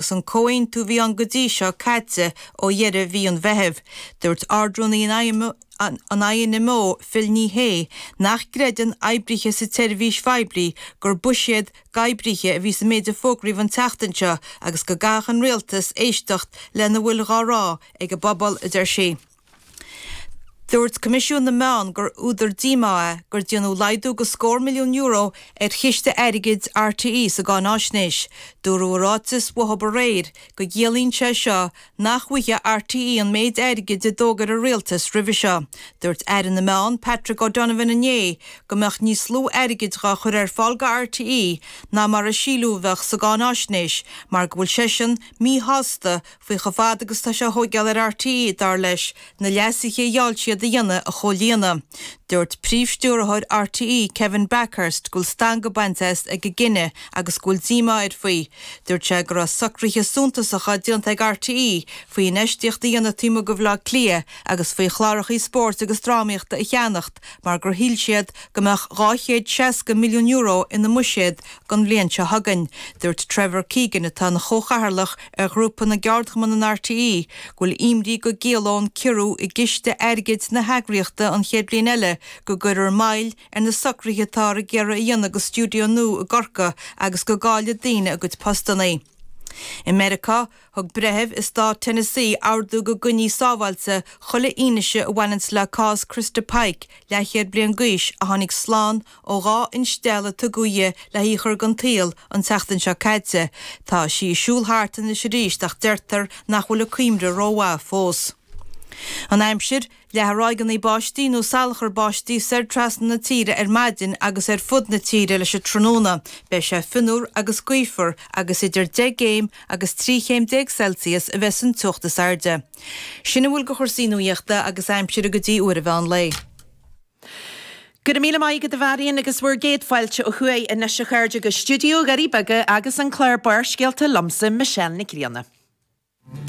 Agus an comhaontú a bhí ann go dtí seo caite ó dheireadh mhí an Mheithimh, dúirt ardrúnaí an INMO, Phil Ní Sheaghdha, nach gcreideann oibrithe sa tseirbhís phoiblí gur buiséad d'oibrithe a bhí sa méid a fógraíodh an tseachtain seo agus go gcaithfeadh an Rialtas éisteacht lena bhfuil dhá rá ag an bpobal, a deir sí. Dúirt Coimisiún na Meán gur údar díomá é gur déanadh laghdú go scór milliún euro ar chiste airgid RTÉ sa gcáináisnéis. Dúradh i ráiteas uathu aréir go gciallaíonn sé seo nach bhfaighidh RTÉ an méid airgid a d'fhógair an Rialtas roimhe seo. Dúirt Aire na Meán, Patrick O'Donovan inné go mbeadh níos lú airgid dhá chur ar fáil do RTÉ ná mar a síleadh a bheadh sa gcáináisnéis mar go bhfuil seisean míshásta faoi chomh fada agus tá sé a thóigeáil ar RTÉ, dar leis, na leasuithe a gheall siad a dhéanamh a chomhlíonadh. Dúirt Príomh-Stiúrthóir RTÉ, Kevin Bakhurst, go bhfuil stangadh bainte as ag an gcinneadh agus go bhfuil díomá air faoi. Dúirt sé go raibh socruithe suntasacha déanta ag RTÉ faoi infheistíocht a dhéanamh taobh amuigh de Bhaile Átha Cliath agus faoi chlárachaí spóirt agus drámaíochta a cheannacht mar gur shíl siad go mbeadh dhá chéad seasca milliún euro ina mbuiséad don bhliain seo chugainn. Dúirt Trevor Keegan, atá ina Chomhchathaoirleach ar Ghrúpa na gCeardchumann in RTÉ go bhfuil imní go gciallóidh ciorrú i gciste airgid na heagraíochta an chéad bhliain eile go gcuirfear moill ar na socruithe atáthar ag iarraidh a dhéanamh do stiúideo nua i gCorcaigh agus go gcaillfidh daoine a gcuid postanna. I Meiriceá, thug breitheamh i Stát Tennessee ordú go gcoinneofaí sábháilte chuile fhianaise a bhaineanns le cás Christa Pike, leathchéad bliain d'aois a tháinig slán Ó dhá instealladh a tugadh dhi le hí a chur den tsaol an tseachtain seo caite, tá sí ag siúl thart anois arís ach deirtear nach bhfuil a cuimhne rómhaith fós. An aimsir, Leathfaidh ráigeanna báistí nó salachar báistí soir trasna na tíre ar maidin agus ar fud na tíre leis an tráthnóna beidh sé fionnuar agus gaofar agus idir deich gcéim agus trí chéim déag Celsius a bheas an teocht is airde. Sin a bhfuil de chúrsaí nuachta agus aimsire go dtí uair an mheán lae. Go raibh míle maith agat a Mháirín agus bhur gcéad fáilte ó thuaidh anois a chairde go Stiúideo Dhoirí Beaga agus an clár Barrscéalta liomsa Michelle Nic Grianna.